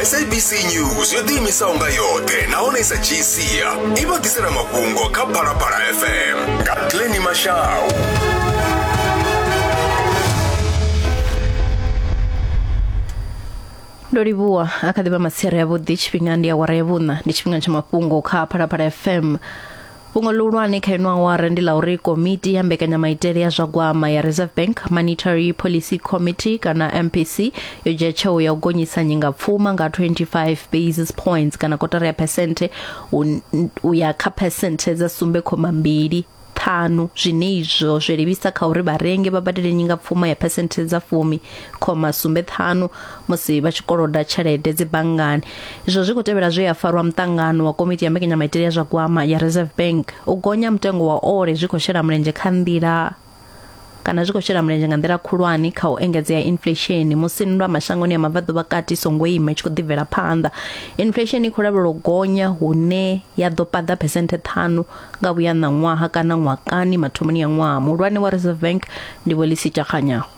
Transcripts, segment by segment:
sabc news yo ḓiimisaho nga yoṱhe nahone sa gcia i vha ḓisela mafhungo kha phalaphala fm nga glenny mashau ndo livhuwa a kha ḓivha masere avhuḓi tshifhinga ndi awara ya vhuṋa ndi tshifhinga tsha mafhungo kha phalaphala fm Fhungo ḽihulwane kha ino awara ndi ḽa uri komiti ya mbekanyamaitele ya zwa gwama ya Reserve Bank Monetary Policy Committee kana MPC yo dzhia tsheo ya u gonyisa nyingapfuma nga 25 basis points kana kotara ya phesenthe u ya kha phesenthe dza sumbe khoma mbili ṱhanu zwine izwo zwi livhisa kha uri vharengi vha badele nyingapfuma ya phesenthe dza fumi khoma sumbe ṱhanu musi vha tshi koloda tshelede dzi banngani izwo zwi khou tevhela zwe ya farwa muṱangano wa komiti ya mbekanyamaitele ya zwa gwama ya reserve bank u gonya mutengo wa ole zwi khou shela mulenzhe kha nḓila kana zwi khou shela mulenzhe nga nḓila khulwane kha u engedzea inflesheni musi nndwa mashangoni ya mabvaḓo vhakati songo ima tshi khou ḓibvela phanḓa inflesheni i khou lavhelwa u gonya hune ya ḓo paḓa phesenthe ṱhanu nga vhuya ṋaṅwaha kana ṅwakani mathomoni ya ṅwaha muhulwane wa reserve bank ndi vho lisita kganyaho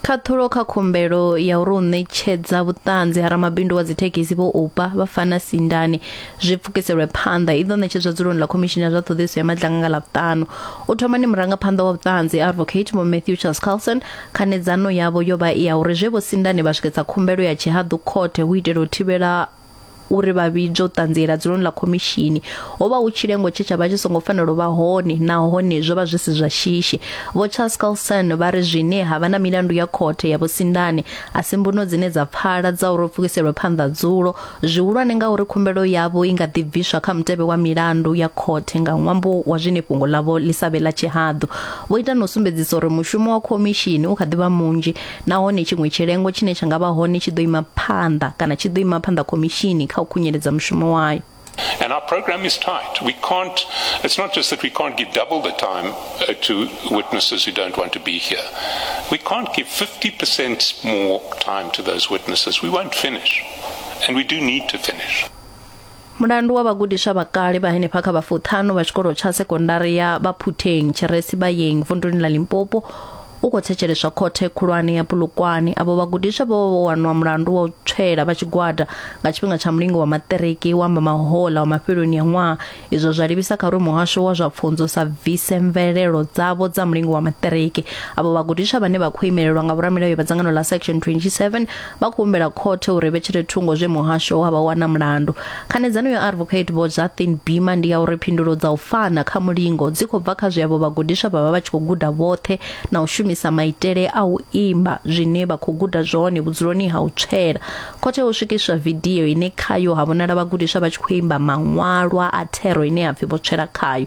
Khaṱhulo kha khumbelo ya uri u ṋetshedza vhuṱanzi ha ramabindu wa dzithekhisi vho upa vha fana sindane zwi pfukiselwe phanḓa i ḓo ṋetshedzwa dzuloni ḽa khomishini ya zwa ṱhoḓisiso ya madlanga nga ḽavhuṱanu u thoma ni murangaphanḓa wa vhuṱanzi advocate vho matthew charles carlson khanedzano yavho yo vha i ya uri zwe vho sindane vha swiketsa khumbelo ya tshihaḓu khothe hu itela u thivhela uri vha vhidzwe u ṱanziela dzuloni ḽa khomishini ho vha hu tshilengo tshe tsha vha tshi songo fanela u vha hone nahone zwo vha zwi si zwa shishi vho charles carlson vha ri zwine ha vha na milandu ya khothe ya vhusindane a si mbuno dzine dza pfala dza uri pfukiselwe phanḓa dzulo zwihulwane nga uri khumbelo yavho i nga ḓi bviswa kha mutevhe wa milandu ya khothe nga ṅwambo wa zwine fhungo ḽavho ḽi sa vhe ḽa tshihaḓu vho ita na u sumbedzisa uri mushumo wa khomishini u kha ḓi vha munzhi nahone tshiṅwe tshilengo tshine tsha nga vha hone tshi ḓo ima phanḓa kana tshi ḓo ima phanḓa khomishini kha u khunyeledza mushumo wayo And our program is tight. We can't, it's not just that we can't give double the time uh, to witnesses who don't want to be here. We can't give 50% more time to those witnesses. We won't finish. And we do need to finish. Mulandu wa vhagudiswa vha kale vha henefha kha vhafuṱhanu vha tshikolo tsha sekondari ya Baphutheng Tshiresi Bayeng vunduni ḽa Limpopo u khou thetsheleswa khothe khulwane ya Polokwane avho vhagudiswa vho vho wanwa mulandu wa u tswela vha tshigwada nga tshifhinga tsha mulingo wa maṱiriki wa mahola wa mafheloni ya ṅwaha izwo zwa livhisa kha uri muhasho wa zwa pfunzo sa bvise mvelelo dzavho dza mulingo wa maṱiriki avho vhagudiswa vhane vha khou imelelwa nga vhoramilayo vha dzangano ḽa section 27 vha khou humbela khothe uri vhetshele thungo zwe muhasho wa vha wana mulandu khanedzano ya advocate vho zathin bima ndi ya uri phindulo dza u fana kha mulingo dzi khou bva kha zwiavho vhagudiswa vha vha vha tshi khou guda vhoṱhe na u shumisa maitele a u imba zwine vha khou guda zwone vhudzuloni ha u tswela khothe ho swikiswa vidio ine khayo ha vhonala vhagudiswa vha tshi khou imba maṅwalwa a thero ine ya pfi vho tswela khayo